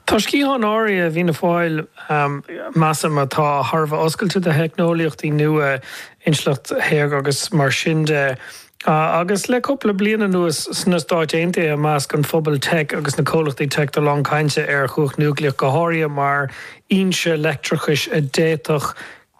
Tá sciatháin áirithe i bhFianna Fáil, measaim, atá thar a bheith oscailte do theicneolaíochtaí nua, intleacht shaorga agus mar sin de. Agus le cúpla bliain anuas sna Stáit Aontaithe i measc an phobail teic agus na comhlachtaí teic tá a lán cainte ar chumhacht núicleach go háirithe mar fhoinse leictreachais a d'fhéadfadh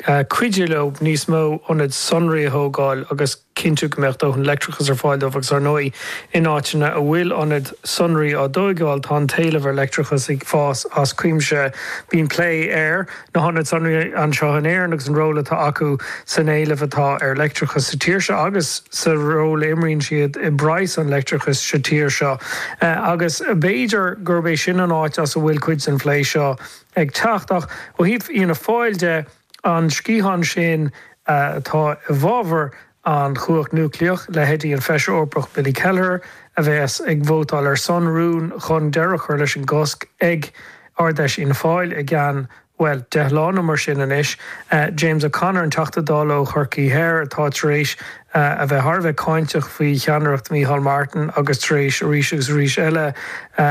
cuidiú leo níos mó ionaid sonraí a thógáil agus chinntiú go mbeadh dóthain leictreachais ar fáil dóibh agus, ar ndóigh, in áiteanna a bhfuil ionaid sonraí á dtóigeáil, tá an t-éileamh ar leictreachas ag fás as cuimse. Bíonn plé ar na hionaid sonraí anseo in Éirinn agus an ról atá acu san éileamh atá ar leictreachas sa tír seo agus sa ról a imríonn siad i bpraghas an leictreachais sa tír seo agus b'fhéidir gurb é sin an áit as a bhfuil cuid den phlé seo ag teacht. Ach ó thaobh Fhianna Fáil de, An sciathán sin atá i bhfabhar an chumhacht núicléach, leithéidí an Feisire Eorpach Billy Kelleher a bheas ag vótáil ar son rún chun deireadh a chur leis an gcosc ag Ard Fheis Fhianna Fáil i gceann, bhuel, deich lá nó mar sin anois, James O'Connor, an Teachta Dála ó Chorcaí Thoir, atá tar éis a bheith thar a bheith cáinteach faoi cheannaireacht Micheál Martin agus tar éis arís agus arís eile a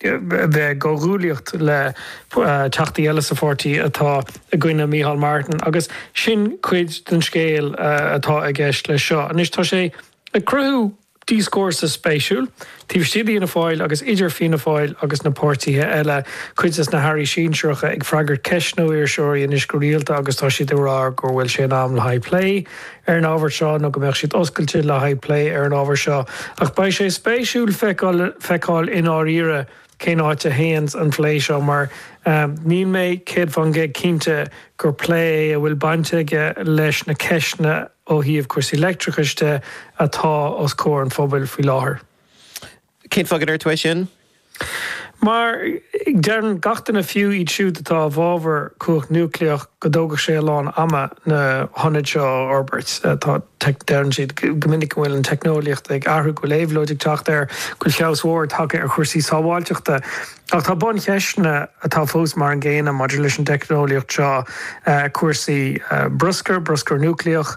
bheith i gcomhghuaillíocht le Teachtaí eile sa pháirtí atá i gcoinne Micheál Martin. Agus sin cuid den scéal atá i gceist leis seo. Anois tá sé ag cruthú. Dioscúrsa spéisiúil. Taobh istigh d'Fhianna Fáil agus idir Fianna Fáil agus na páirtithe eile, cuid de na hairí sinsearacha ag freagairt ceisteanna ó iriseoirí anois go rialta agus tá siad ag rá go bhfuil sé in am le haghaidh plé ar an ábhar seo nó go mbeadh siad oscailte le haghaidh plé ar an ábhar seo. Ach beidh sé spéisiúil feiceáil i ndáiríre cén áit a théanns an phlé seo mar níl mé céad fán gcéad cinnte gur plé é a bhfuil baint aige leis na ceisteanna a ó thaobh cúrsaí leictreachais de, atá os comhair an phobail faoi láthair. Cén fáth go ndeir tú é sin? Mar, deireann gach duine, fiú iad siúd atá i bhfabhar cumhacht núicléach, go dtógfadh sé a lán ama na hionaid seo a fhorbairt. Tá, deireann siad go minic go bhfuil an teicneolaíocht ag athrú, go bhfuil éabhlóid ag teacht air, go bhfuil feabhas mhór tagtha ar chúrsaí sábháilteachta. Ach tá buncheisteanna atá fós mar an gcéanna maidir leis an teicneolaíocht seo, cúrsaí bruscair, bruscar núicléach,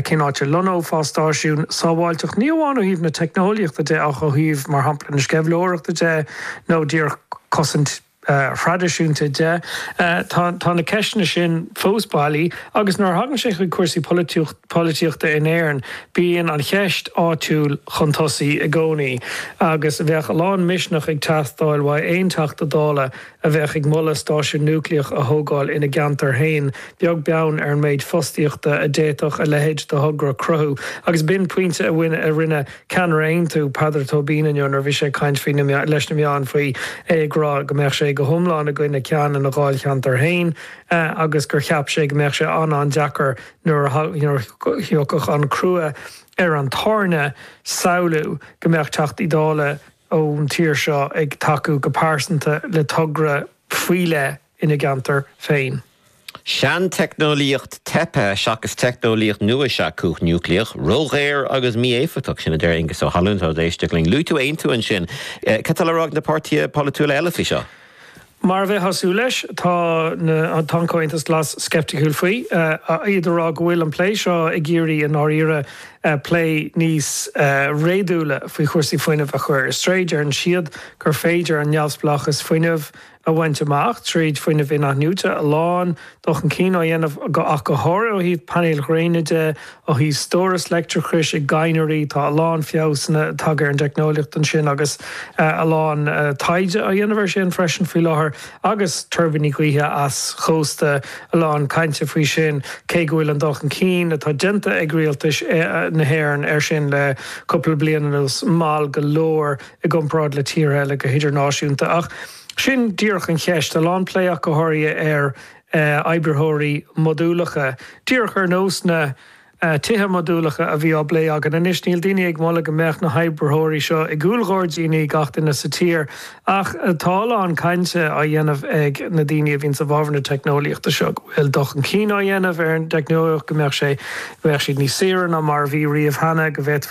cén áit a lonnófá stáisiún, sábháilteacht ní amháin ó thaobh na teicneolaíochta de ach ó thaobh, mar shampla, na sceimhlitheoireachta de nó díreach cosaint thraidisiúnta de. Tá na ceisteanna sin fós bailí agus nuair a thagann sé chuig cúrsaí polaitiúchta, polaitíochta in Éirinn, bíonn an cheist áitiúil chun tosaigh i gcónaí agus bheadh a lán misneach ag teastáil ó aon Teachta Dála a bheadh ag moladh stáisiún núicléach a thógáil ina gceantar féin, beag beann ar an méid fostaíochta a d'fhéadfadh a leithéid de thogra a chruthú. Agus b'in pointe a rinne ceannaire Aontú, Peadar Tóibín inniu nuair a bhí sé ag caint faoi leis na meáin faoi, é ag rá go mbeadh sé go hiomlán i gcoinne ceann ina dháilcheantar féin agus gur cheap sé go mbeadh sé an-an-deacair nuair a thiocfadh an crú ar an tairne, samhlú go mbeadh Teachtaí Dála ón tír seo ag tacú go pearsanta le togra faoi leith ina gceantar féin. Seanteicneolaíocht teipthe seachas teicneolaíocht nua is ea cumhacht núicléach. Ródhaor agus mí-éifeachtach. Sin a deir Aonghus Ó hAlmhain atá ag éisteacht linn. Luaigh tú Aontú ansin. Cad tá le rá ag na páirtithe polaitiúla eile faoi seo? Mar a bheifeá ag súil leis, tá an Comhaontas Glas sceipticiúil faoi, iad ag rá go bhfuil an plé seo ag iarraidh i ndáiríre plé níos réadúla faoi chúrsaí fuinnimh a chur ar strae. Deireann siad gur féidir an neamhspleáchas fuinnimh a bhaint amach trí fuinneamh inathnuaite, a lán Dul chun cinn á dhéanamh ach go háirithe ó thaobh painéil ghréine de, ó thaobh stóras leictreachais i gcadhnraí, tá a lán feabhasanna tagtha ar an dteicneolaíocht ansin agus a lán taighde á dhéanamh air sin freisin faoi láthair, agus tuirbíní gaoithe eischósta, a lán cainte faoi sin, cé go bhfuil an dul chun cinn atá déanta ag rialtais na hÉireann air sin le cúpla bliain anuas mall go leor i gcomparáid le tíortha eile go hidirnáisiúnta. Ach. Sin díreach an cheist a lán plé ach go háirithe ar imoibritheoirí modúlacha, díreach ar nós na tithe modúlacha a bhí á bplé againn anois. Níl daoine ag moladh go mbeadh na himoibritheoirí seo i gcúl ghairdíní gach duine sa tír, ach tá a lán cainte á dhéanamh ag na daoine a bhíonn i bhfabhar na teicneolaíochta seo go bhfuil dul chun cinn á dhéanamh ar an dteicneolaíocht, go mbeadh sé, go mbeadh siad níos saoire ná mar a bhí riamh cheana, go bhféadfaí.